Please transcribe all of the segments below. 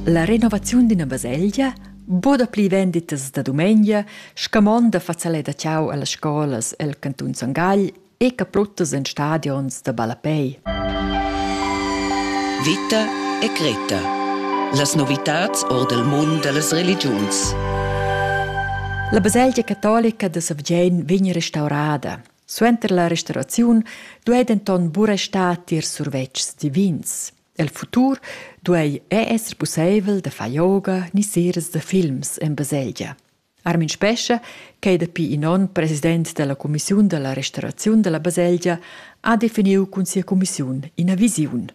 La renovaziun d'üna baselgia bod pli venditas da dumengia, scamonda fazalet da ciao a las scolas el cantun Son Gagl e capruttas in stadions da ballapei. Vita e Greta. Las novitats or del mund dellas religiuns. La baselgia catolica da Savgein vegn restaurada. Suenter la restauraziun duei denton buca star tier survetschs divins. El futur duei ei esser pusseivel da far yoga ni seras da films en baselgia. Armin Spescha, ch'ei dapi in onn president dalla cumissiun dalla restauraziun dalla baselgia, ha definiu cun sia cumissiun ina visiun.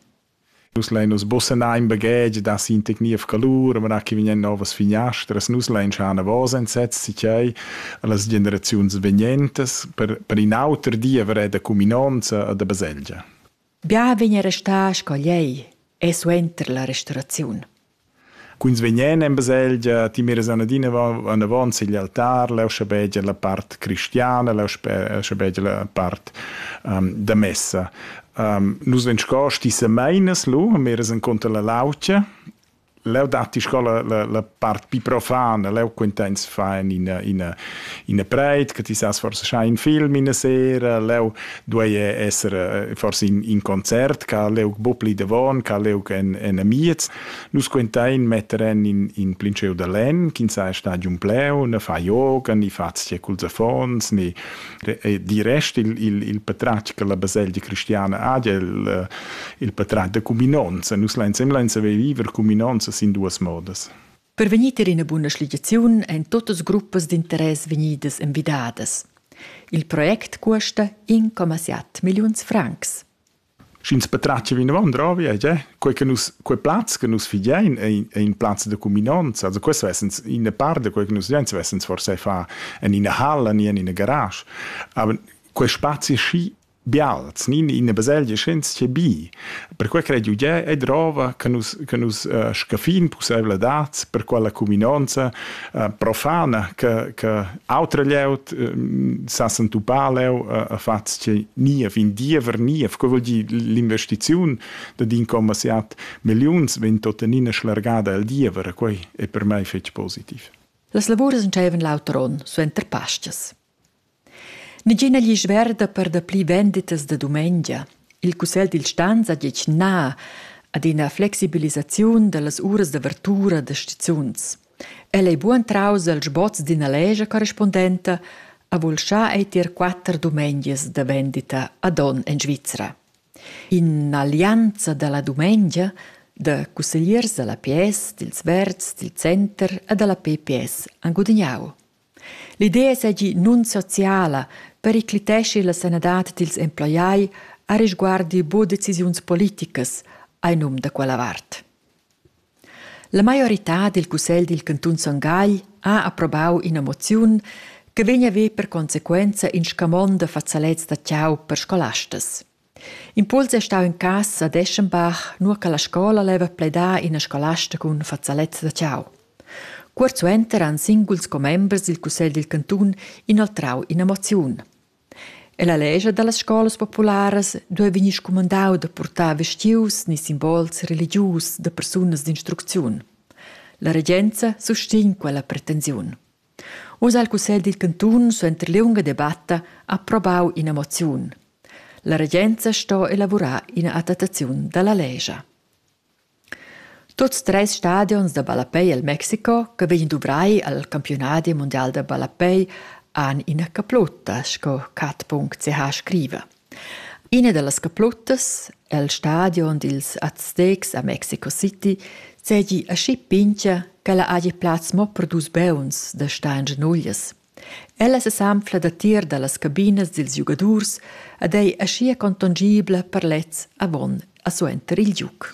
Nus lein nus bussenar in baghetg da sin tecniv calur, mera che vegnan novas finiastras, nus lein schar anavos enzets si tgei las generaziuns vegnentas per, per in auter di haver da cuminonza e da baselgia. Bia vegn restà sco lei e suenter la restauraziun. Quins vegnan en baselgia, ti miras anadina anavant sigl altar, leu schabegia la part cristiana, leu schabegia la part um, da messa. Um, nus vegn sco stissameinas lu, miras enconter la laucia Leu datti sco la, la, la part più profana, leu quintens fan ina, ina, ina preit, che ti sas forse schai in film in sera, leu duei esser eh, forse in, in concert, ca leu bo pli davon, ca leu en, en amiez. Nus quentein metter en in, in plinceu da len, ch'in sa stadium pleu, ne fa yoga, ni fa cul affons, ni di rest il, il, il patratg che la baselgia cristiana ha, il, eh, il patratg da cuminonza. Nus lansem lain saver viver cuminonza sin duas modas. Per vegnir tier ina buna schligiaziun ein totas gruppas d'interess vegnidas envidadas. Il project custa 1,7 milliuns francs. sch'ins patratgia vinavant ravi è tge quei che nus quei plaz che nus fidein è in, è in plaz da cuminanza also questo essens in parte quei che nus fidein essens forse fa en ina halla ni en ina garage aber quei spazi schi bials ni in una baselgia schens che bi per quei credo je è drova che nus che nus uh, scafin possibile dat per quella cuminanza uh, profana che che Autra glieud sa s'entupar leu a fatgs che ni a fin diever ni a vuol dir l'investiziun da din commerciat milliuns vegn tuttenina schlargada al diever e quei è per mei fetg positiv. Las lavuras entscheivan l'auter onn suenter Pascas. Nigina gli sverda per da pli venditas da dumengia. Il cussel dil stanza diec na ad ina flexibilisaziun dallas uras d'avertura da stizuns. El ei bugen traus el sboz d'ina lescha corrispundenta, ha vulschà ei tier quatter dumengias da vendita ad onn en Svizra. In'allianza dalla dumengia da cussegliers dalla PS, dils Verds, dil Center e dalla PPS han gudignau. L'idea seigi nunsociala, pericliteschi la sanadad dils emploiai a risguardi buca decisiuns politicas, ei num da quella vart. La maioritad dil cussegl dil cantun Son Gagl ha approbau ina moziun che vegn a ver per consequenza in scamond da fazalets da tgau per scolastas. Impuls è stau in cass a Deschenbach, nua che la scola leva pledar ina scolasta cun fazalets da tgau. Cuort suenter han singuls commembers dil cussegl dil cantun inoltrau ina moziun. E la lescha dallas scolas popularas duei vegnir scumandau da purtar vestius ni simbols religius da persunas d'instrucziun. La regenza sustegn quella pretensiun. Uss ha il cussegl dil cantun suenter liunga debatta approbau ina moziun. La regenza sto elavurar ina adattaziun dalla lescha. Tuots treis stadions da ballapei el Mexico che vegnan duvrai al campiunadi mundial da ballapei han ina caplutta sco cat.ch scriva. Ina dallas capluttas el stadion dils Aztecs a Mexico City seigi aschi pintga ch'ella hagi plaz mo per dus beuns da stagn genuglias. Ella sesanfla datier dallas cabinas dils giugadurs ed ei aschia contongibla per lez avon e suenter il giug.